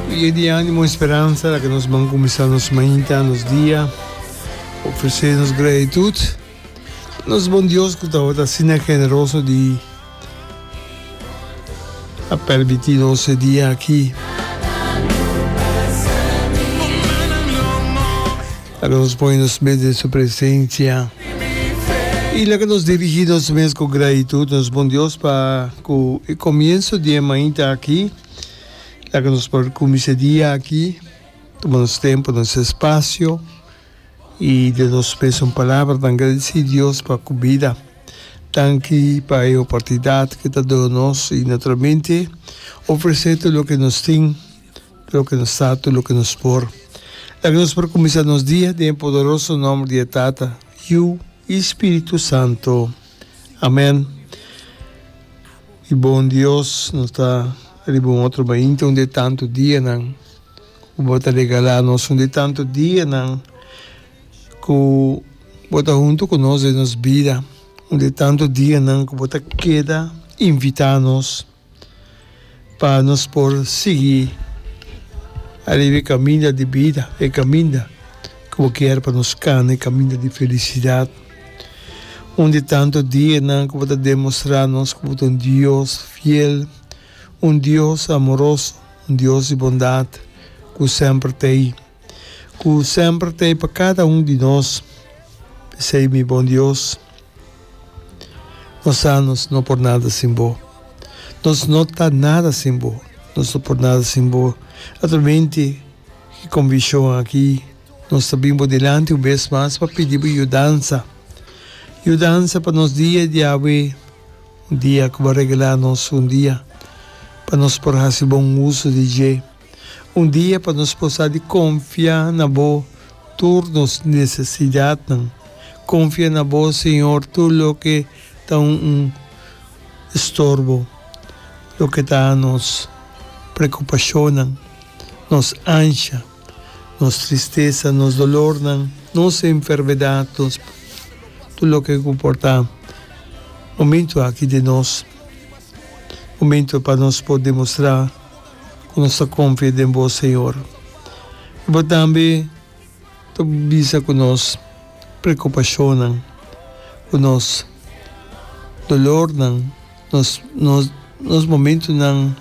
Dia di animo y speransa la ke nos ban kuminsá nos mainta, nos dia ofresé nos gratitud pa nos Bon Dios ku tabata asina generoso di a permití nos e dia aki. Laga nos pone nos mes den su presencia y laga nos dirigi nos mes cu gratitud nos bon Dios pa cu e comienzo di e mainta aki laga nos por cuminsa e dia aki tuma nos tempo nos espacio y den nos mes un palabra ta agradeci Dios pa cu bida tanki pa e oportunidad ki ta duna nos y naturalmente ofrece tur loke nos tin. Loke nos ta tur loke nos por. La ke nos por kuminsá nos dia den e podoroso nòmber di e Tata, Yu i Spiritu Santo. Amèn. Di bon Dios nos ta riba un otro mainta un di e tantu dianan ku bo ta regalá nos, un di e tantu dianan ku bo ta huntu ku nos den nos bida, un di e tantu dianan ku bo ta keda invitá nos. pa nos por sigui ariba e kaminda di bida, e kaminda ku bo kier pa nos kana, e kaminda di felisidat. Un di tantu dianan ku bo ta demostrá nos ku bo ta un Dios fiel, un Dios amoroso, un Dios di bondat ku semper ta ei. Ku semper ta ei pa kada un di nos, p'esei mi Bon Dios, nos sa nos no por nada sin bo. Nos no ta nada sin bo, nos no por nada sin bo. Naturalmente e konvishon aki nos ta bin bo dilanti un bes mas pa pidi bo yudansa, yudansa pa nos dia di awe, un dia ku bo a regalá nos un dia pa nos por hasi bon uso di dje. Un dia pa nos por sa di konfia na Bo tur nos nesesidatnan. Konfia na Bo, Señor, tur loke ta un un estorbo, loke ta nos prekupashonnan, nos ansha, nos tristesa, nos dolornan, nos enfermedat, nos tur loke ku por ta momentu aki di nos momentu pa nos por demostrá. ku nos ta konfia den Bo, Señor. I Bo tambe ta bisa ku nos preokupashonnan, ku nos dolornan, nos nos momentunan.